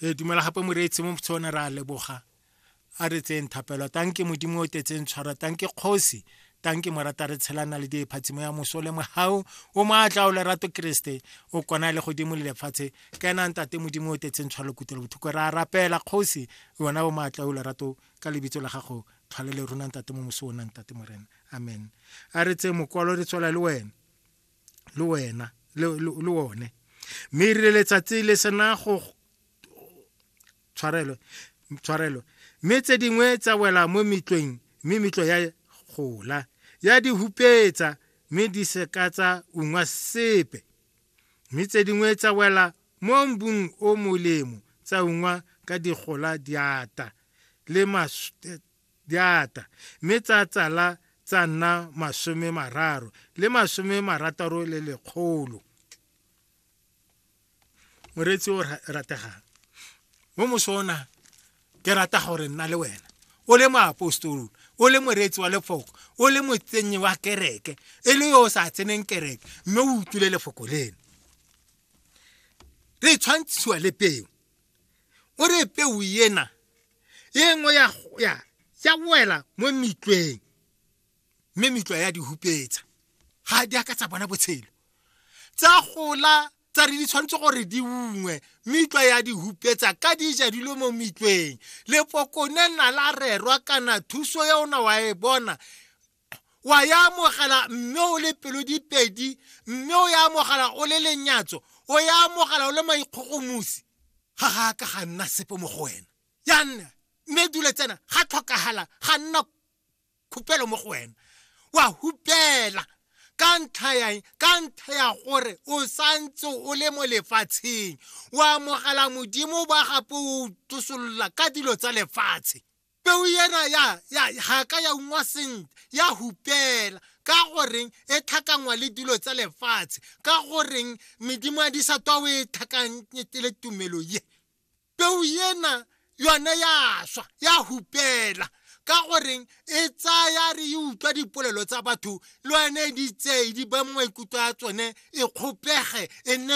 re dumela gape moreetsi mo motshone re a leboga a re tseyeng thapelo tanke modimo o tetseng tshwara tanke kgosi tanke morata re tshelana le diephatsimo ya moso le mogau o maatla o lerato keresete o kona le godimo le lefatshe ka enang tate modimo o tetseng tshwalo kutelo bothoko re a rapela kgosi yona o maatla o lerato ka lebitso la gago tlhole le ronang tate mo moso o nang tate morena amen a re tse mokwalo re tswela le wena le wena le one mme e rile letsatsi le sena go tshwarelo tshwarelo mme tse dingwe tsa wela mo metlweng mme metlo ya gola ya di hupetsa mme di se ka tsa ungwa sepe mme tse dingwe tsa wela mo mbung o molemo tsa ungwa ka digola diata le di ata mme tsa tsala tsa nna masome mararo le masome marataro le lekgolo moreetsi o rategang mo mosona ke rata gore nna le wena o le moapostolo o le moreetsi wa lefoko o le motsenyi wa kereke e le yo o sa tseneng kereke mme o utlwile lefoko leno re tshwantshiwa le peo o re peo ena e nngwe ya ya ya wela mo metlweng mme metlwa ya di hupetsa ga di aka tsa bona botshelo tsa gola tsa re di tshwanetse gore di ungwe metlwa ya di hupetsa ka di ja dilo mo metlweng lepokone na la rerwa kana thuso ya ona wa e bona wa ya amogela mme o le pelo dipedi mme o ya amogela o le lenyatso o ya amogela o le maikgogomosi ga ga ka ga nna sepe mo go wena ya nna mme dule tsena ga tlhokagala ga nna khupelo mo go wena wa hupela ka ntlha ya ka ntlha ya gore o santse o le mo lefatsheng o amogela modimo ba gape o tosolola ka dilo tsa lefatshe peo ena ya ya ga ka ya ungwa sentle ya hupela ka goreng e tlhakangwa le dilo tsa lefatshe ka goreng medimo ya disatwa o e tlhakanyete le tumelo ye peo ena yone ya swa ya hupela ka goreng e tsaya re e utlwa dipolelo tsa batho le yone e ditsei di ba maikutlo a tsone e kgopege e nne